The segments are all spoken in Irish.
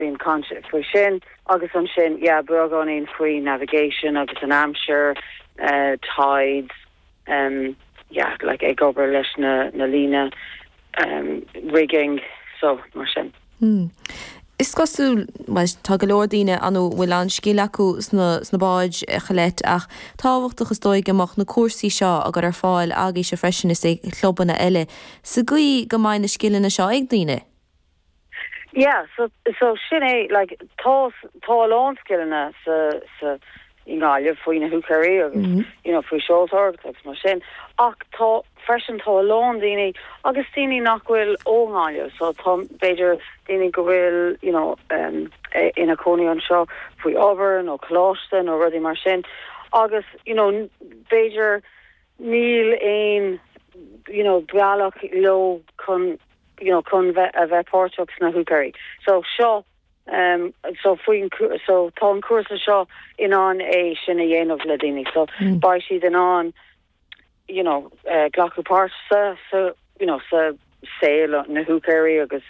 Bíonn caint faoi sin agus ansin, yeah, beagáinín faoi navigation agus an aimsir, tides, yeah, like ag obair leis na líne, rigging, so, mar sin. Hmm. Is cosúil, bhuel, tá go leor daoine ann a bhfuil an-scil acu sna báid, a Cholette, ach tábhachtach, is dóigh, go mbeadh na cúrsaí seo á gcur ar fáil agaibhse freisin is ag clubanna eile, sa gcaoi go mbeidh na scileanna seo ag daoine. Yeah so so sin é like tá tá a lán scileanna sa sa i nGaillimh faoi na húicéirí agus you know faoi seoltóireacht agus mar sin ach tá freisin tá a lán daoine agus daoine nach bhfuil ó Gaillimh so tá b'fhéidir daoine go bhfuil you know um ina cónaí anseo faoi obair nó coláiste nó rudaí mar sin agus you know b'fhéidir Níl aon you know bealach leo chun you know chun bheith a bheith páirteach sna húicéirí. So seo em so faoin so tá an cúrsa seo in ann é sin a dhéanamh le daoine. So beidh siad in ann you know eh glacadh páirt sa sa you know sa saol na húicéirí agus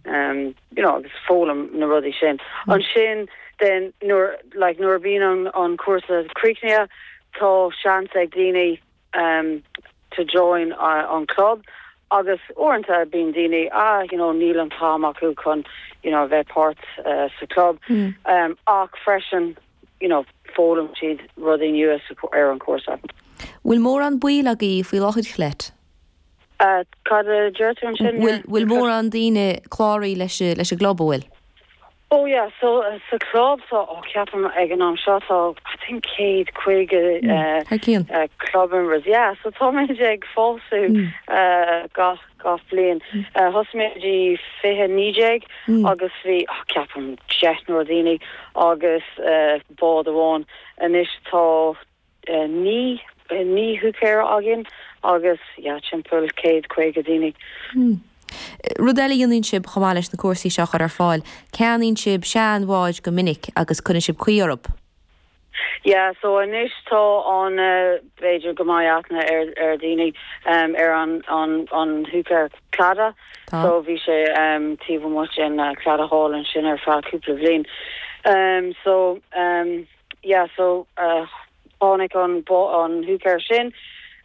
you know agus foghlaim na rudaí sin. Ansin then nuair like nuair a bhíonn an an cúrsa críochnaithe tá seans ag daoine ehm to join an club agus uaireanta bíonn daoine ah you know níl an t-am acu chun you know a bheith páirt eh sa club ehm ach freisin you know foghlaim siad rudaí nua ar an chúrsa. Bhfuil mórán baill agaibh faoi láthair a Cholette? Ah, cad a deir tú ansin? Bhfuil, bhfuil mórán daoine cláraithe leis an, leis an gclub, an bhfuil? Oh yeah, so sa chlub so, oh ceapaim ag an am seo tá I think céad caoga eh, Thar cionn. eh, club members, yeah, so tá muid ag fás eh, gach, gach bliain. Eh, Thosaigh muid i fiche naoi déag agus bhí, oh ceapaim deichniúr daoine agus eh, bád amháin. Anois tá Naoi húicéir againn agus yeah timpeall céad caoga daoine. Hmm. Rud eile a dhéanann sibh chomh maith leis na cúrsaí seo a chur ar fáil, ceannaíonn sibh seanbháid go minic agus cuireann sibh caoi orthu. Yeah so anois tá an b'fhéidir go mbeidh aithne ar daoine ar an húicéir Claddagh so bhí sé taobh amuigh den Claddagh Hall ansin ar feadh cúpla bliain so yeah. yeah so uh tháinig an an húicéir sin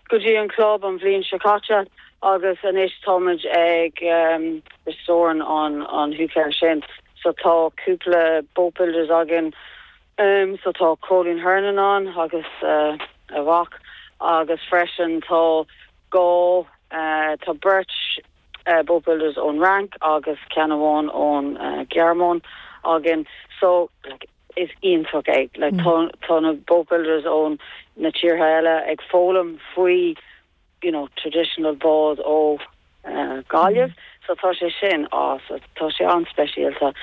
go dtí an club an bhliain seo caite agus anois táimid ag um restoring an an húicéir sin so tá cúpla boat builders againn um so tá Cóilín Hernon ann agus uh a mhac agus freisin tá dhá uh tá beirt uh boat builders ón Fhrainc agus ceann amháin ón uh Ghearmáin againn so like is iontach é like tá na boat builders óna tíortha eile ag foghlaim faoi you know traditional bád ó Gaillimh so tá sé sin awesome. Tá sé an-speisialta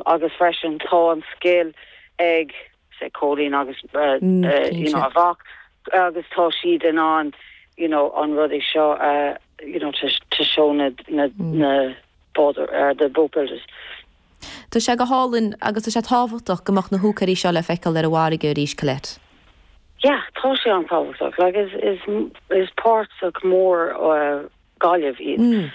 agus freisin tá an scil ag say Cóilín agus you know a mhac agus tá siad in ann you know an rudaí seo a you know to show na na na bád the boat builders. Tá sé go hálainn agus tá sé tábhachtach go mbeadh na húicéirí seo le feiceáil ar an bhfarraige arís, Colette. Yeah, tá sé an-tábhachtach, like is is páirteach mór ó Gaillimh iad.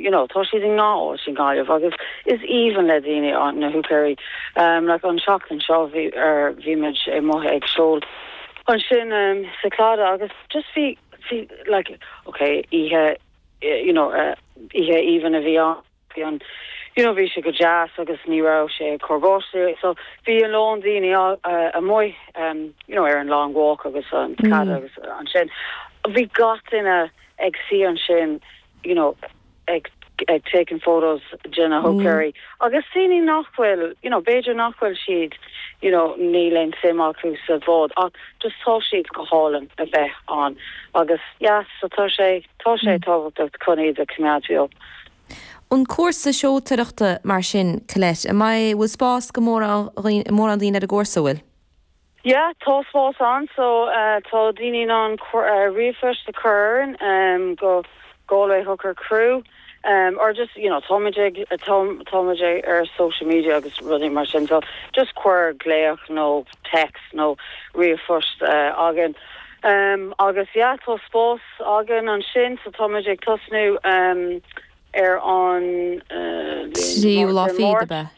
You know, tá siad i ngach áit i nGaillimh agus is aoibhinn le daoine na húicéirí. Like an seachtain seo bhí ar bhíomar amuigh ag seol ansin sa Claddagh agus just bhí bhí like, ok, oíche you know oíche aoibhinn a bhí ann. bhí ann. You know bhí sé go deas agus ní raibh sé ag cur báistí so bhí a lán daoine amuigh em you know ar an long walk agus an Claddagh agus ansin bhí gach duine ag suí ansin you know ag ag taking photos de na húicéirí agus daoine nach bhfuil you know b'fhéidir nach bhfuil siad you know níl aon suim acu sa bhád ach just tá siad go hálainn a bheith ann agus yeah so tá sé Tá sé tábhachtach chun iad a choimeád beo. An cúrsa seoltoireachta mar sin, Colette, an bhfuil spás do mhórán daoine ar an gcúrsa, an bhfuil? Yeah, tá spás ann so tá daoine in ann ríomhphost a chur orainn go Galway Hooker Crew or just, you know, táimid ag, táimid ar social media agus rudaí mar sin so just cuir glaoch nó text nó ríomhphost againn agus yeah, tá spás. 's againn ansin so táimid ag tosnú ar an. Trialach Mháirt. fadhb ar bith.